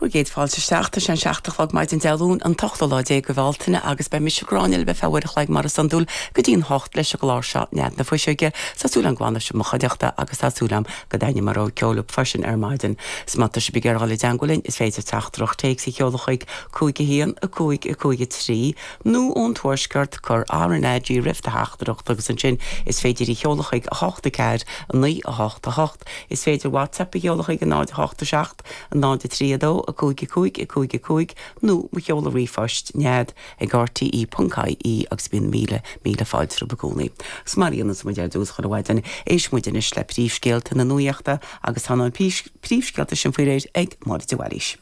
Bhur gcéad fáilte isteach. Tá sé an seacht a chlog maidin Dé Luain, an t-ochtú lá déag de Bhealtaine, agus beidh mise, Gráinne, libh ar feadh uair a chloig mar is iondúil go dtí an hocht leis an gclár seo, Nead na Fuiseoige, tá súil agam go bhfanfaidh sibh i mo chuideachta agus tá súil agam go dtaitneoidh mo rogha ceoil libh freisin ar maidin. Is má tá sibh ag iarraidh dul i dteangmháil linn is féidir teachtaireacht téacs a sheoladh chuig 5 1 5 5 3 nó ón Tuaisceart, cuir RnaG roimh do theachtaireacht agus ansin is féidir í a sheoladh chuig 8 4 9 8 8. Is féidir WhatsApp a sheoladh chuig 0, 8, 7, 0, 3, 2, 5, 5, 5, 5 nó mo sheoladh ríomhphoist, nead, ag rte.ie agus bíonn míle, míle fáilte rompu i gcónaí. Agus mar a dhéanas muid ar dtús chuile mhaidin, éistfidh muid anois le príomhscéalta na nuaíochta agus tá na príomhscéalta sin faoi réir ag Máire de Bhailís.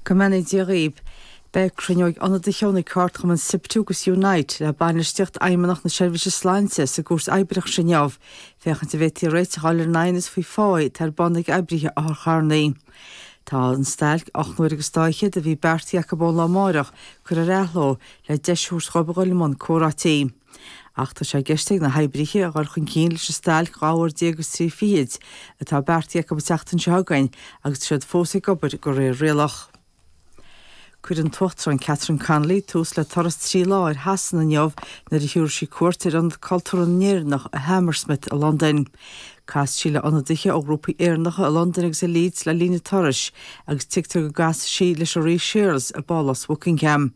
Go mbeannaí Dia dhaoibh. Beidh cruinniú ag ionadaithe ó na ceardchumainn Siptu agus Unite le Bainistíocht Fheidhmeannacht na Seirbhíse Sláinte sa gCúirt Oibreachais inniu, Féachaint an bhféadfaí réiteach a fháil ar an aighneas faoi pháigh atá ar bun ag oibrithe otharcharrannaí. Tá an stailc ocht n-uaire agus dá fhichead a bhí beartaithe acu ón lá amárach curtha ar athló le deis a thabhairt dhóibh a dhul i mbun comhráití. Ach tá sé i gceist ag na hoibrithe a dhul chun cinn leis an stailc dhá uair déag agus trí fichid atá beartaithe acu an tseachtain seo chugainn agus tá siad fós ag obair de réir rialach. Cuirfidh an tUachtarán Catherine Connolly tús le turas trí lá ar Shasana inniu nuair a thabharfaidh sí cuairt ar Ionad Cultúrtha na nÉireannach i Hammersmith i Londain. Casfaidh sí le ionadaithe ó ghrúpaí Éireannacha i Londain agus i Leeds le linn a turais agus tuigtear go gcasfaidh sí leis an Rí Séarlas i bPálás Bhuckingham.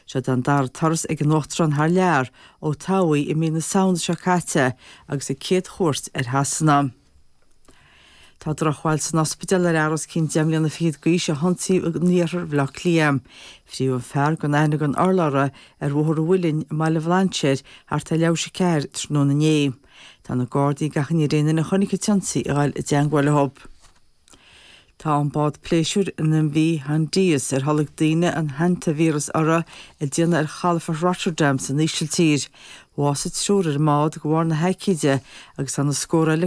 Seo an dara turas ag an Uachtarán thar lear ó toghadh í i mí na Samhna seo caite agus a céad chuairt ar Shasana. Tá drochbhail san ospidéal ar fhear os cionn deich mbliana fichead d'aois a hionsaíodh in iarthar Bhaile Átha Cliath. Frítheadh an fear gan aithne gan urlabhra ar Bhóthar an Mhuilinn i mBaile Bhlainséir thart ar leathuair tar éis a ceathair tráthnóna inné. Tá na Gardaí ag achainí ar aon duine a chonaic an t-ionsaí a ghabháil i dteagmháil leo. Tá an bád pléisiúir an MV Hondius, ar tholg daoine an hantaivíreas uirthi, ag déanamh ar chalafort Rotterdam san Ísiltír. Bhásaigh triúr ar an mbád de bharr na haicíde agus tá na scórtha eile